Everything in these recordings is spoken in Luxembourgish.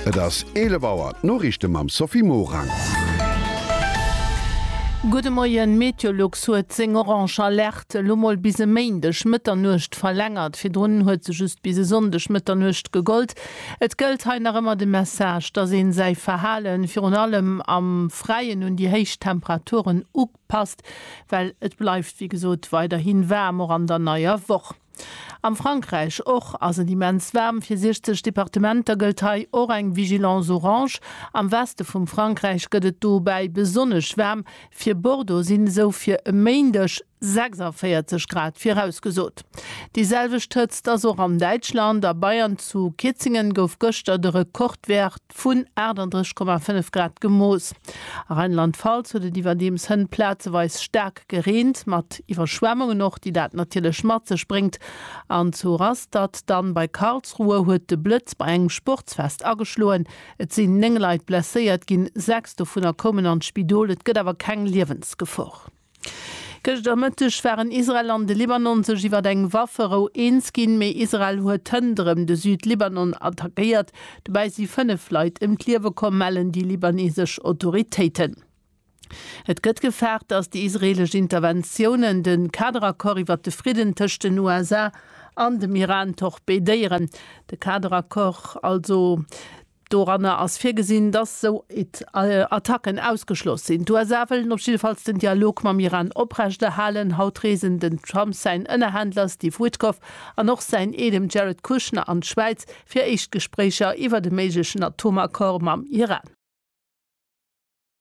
Et ass 11 Auer, d'Noriichte mam Sophie Morang. Gudde Moien, Meteolux huet seng orange Alerte elo mol bis e Méindeg Mëtternuecht verlängert. Virdrun huet se just bis e Sonndeg Mëtternuecht gegollt. Et gëllt hei nach ëmmer de Message, dass een säi Verhale virun allem am Fräien un déi héich Temperaturen upasst, well et bleift wéi gesot weiderhi waarm, och an der neier Woch. Am Frankräich och ass et immens waarm. Fir 60 Departementer gëllt hei och eng Vigilance orange. Am Weste vum Frankräich gëtt et dobäi besonnesch waarm. Fir Bordeaux sinn esou fir e Méindeg 46 Grad virausgesot. Déi selwecht Hëtzt ass och an Däitschland. A Bayern zu Kitzingen gouf gëschter de Rekordwäert. vun 38,5 Grad gemooss. A Rheinland-Pfalz huet et iwwerdeems hënt plazeweis staark gereent, mat Iwwerschwemmungen och, déi dat natierlech mat sech bréngt. An zu Rastatt dann bei Karlsruhe huet de Blëtz bei engem Sportsfest ageschloen. Et sinn 9 Leit blesséiert ginn, 6 dovunner koumen an d'Spidol. Et gëtt awer keng Liewensgefor. Gëschter Mëtteg waren Israel an de Libanon sech iwwer eng Wafferou eens ginn, mee Israel huet hënnt rëm de Süd-Libanon attackéiert. Dobäi si fënnef Leit ëm d'Liewe komm, mellen déi libanesesch Autoritéiten. Et gëtt gefaart, datt déi israeelesch Interventiounen de Kaderaccord iwwer de Fridden tëscht den USA an dem Iran torpedéieren. De Kaderaccord also. Doranner ass virgesinn, datt sou Attacken ausgeschloss sinn. D'USA wëllen op jiddefalls den Dialog mam Iran oprechterhalen. Haut reesen den Trump, säin Ënnerhändler Steve Witkoff an och säin Eedem Jared Kushner an d'Schwäiz fir éischt Gespréicher iwwert e méiglechen Atomaccord mam Iran.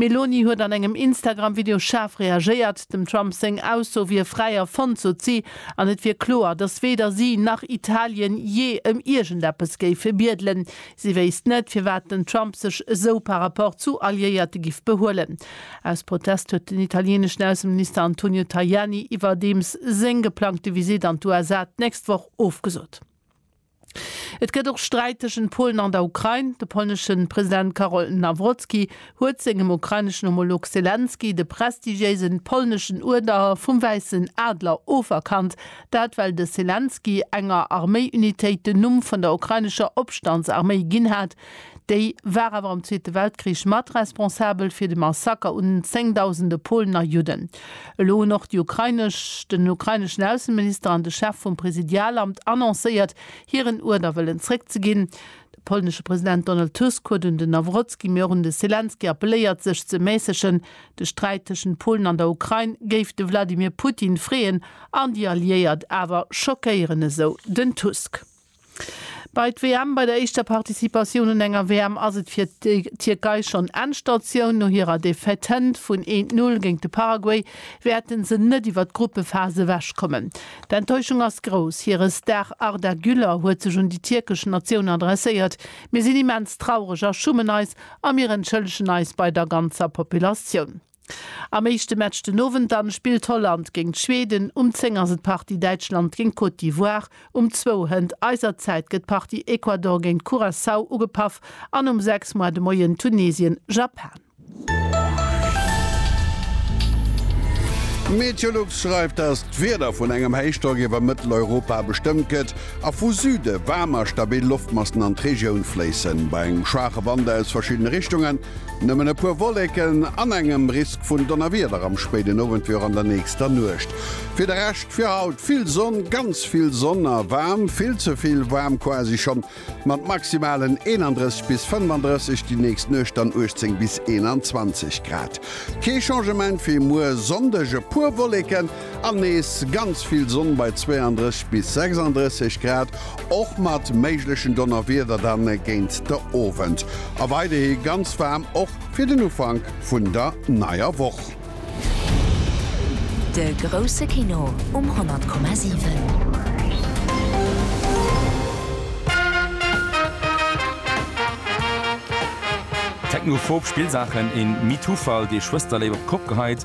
D'Meloni huet an engem Instagram-Video schaarf reagéiert. Dem Trump seng Ausso wier fräi erfonnt, sot si, an et wier kloer, datt weder si nach Italien jee ëm iergendeppes géife biedelen. Si wéisst net, firwat den Trump sech esou par rapport zu Alliéierte giff behuelen. Aus Protest huet den italieneschen Ausseminister Antonio Tajani iwwerdeems seng geplangte Visitt an d'USA d'nächst Woch ofgesot. Et gëtt och Sträit tëschent Polen an der Ukrain. De polnesche President Karol Nawrocki huet sengem ukraineschen Homolog Selenskyj de prestigiéise polneschen Uerder vum Wäissen Adler oferkannt. Dat well de Selenskyj enger Arméi-Unitéit den Numm vun der ukrainescher Opstandsarméi ginn hat, Déi war awer am Zweete Weltkrich mat responsabel fir de Massaker un zéngdausende Polen a Judden. Elo hunn och déi ukrainesch, den ukraineschen Ausseminister an de Chef vum Präsidialamt annoncéiert, hiren Uerder wëllen zréckzeginn. De polnesche President Donald Tusk huet un den Nawrocki, mee och un de Selenskyj appelléiert, sech ze mässegen. De Sträit tëschent Polen an der Ukrain géif de Wladimir Putin freeën an déi Alliéiert, awer schockéieren esou den Tusk. Bei d'WM, Bei der éischter Participatioun un enger WM ass et fir d'Tierkei schonn Endstatioun. No hirer Defaite vun een Null géint de Paraguay wäerte se net iwwer d'Gruppephas ewech kommen. D'Enttäuschung ass grouss. Hire Star Arda Güler huet sech un déi tierkesch Natioun adresséiert, Mir sinn immens traureg a schummen eis a mir entschëllegen eis bei der ganzer Populatioun. Am éischte Match den Owend dann spillt Holland géint Schweden, um 10 ass et d'Partie Däitschland géint Côte d'Ivoire, um zwou Hënt eiser Zäit gëtt d'Partie Ecuador géint Curaçao ugepaff an um 6 Moar de Moien Tunesien, Japan. Meteolux schreift, dass d'Wieder vun engem Héichdrock iwwer Mëtteleuropa bestëmmt gëtt a vu Süde waarm a stabil Loftmassen an d'Regioun fléissen. Bei engem schwaache Wand aus verschiddene Richtungen Nëmmen e puer Wolleken an engem Risk vun Donnerwieder am spéiden Owend wéi och an der nächster Nuecht. Fir de Rescht fir haut vill Sonn, ganz vill Sonn a waarm, vill ze vill waarm quasi schonn, mat Maximalen 31 bis 35, déi nächst Nuecht dann 18 bis 21 Grad. Kee Changement wéi muer Sonndeg, e puer Wolleken, An nees ganz vill Sonn bei 32 bis 36 Grad, och mat méiglechen Donnerwieder dann géint de Owend. A weiderhi ganz waarm och fir den Ufank vun der neier Woch. De grousse Kino um 100,7. Technophob Spillsaachen, een Metoo-Fall, dee Schwësterléift op d'Kopp geheit,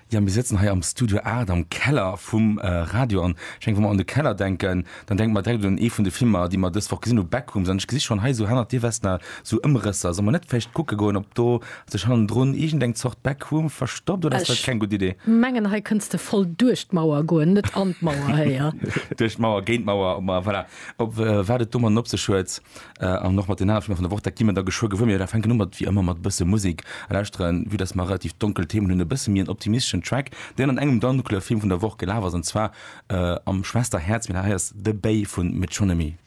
Jo, mir sëtzen hei am Studio 8 am Keller vum Radio. An ech mengen, wa mer un de Keller denken, dann denke mer direkt un ee vun de Filmer, déi mer dës Woch gesinn hu, Backrooms. An ech gesi schonn hei esou hannert dir Vesna esou Ëmrësser. Solle mer net vläicht kucke goen, ob do sech hannendrun iergendeng Zort Backroom verstoppt? Oder ass dat keng gutt Idee? Ech mengen, hei kënns de voll duerch d'Mauer goen, net an d'Mauer héier. Duerch d'Mauer, géint d'Mauer, voilà, op wat et domatten op sech huet. An och mat den anere Filmer vun der Woch, dat gi mer da geschwë gewuer. Mee da fänken un mat, wéi ëmmer, mat e bësse Musek lauschteren, vue dass mer relativ donkel Themen hunn. E bësse méi en optimisteschen Track, deen an engem donkelere Film vun der Woch gelaf ass, an zwar am Schwesterhäerz. Mee dat hei ass The Bay vu Metronomy.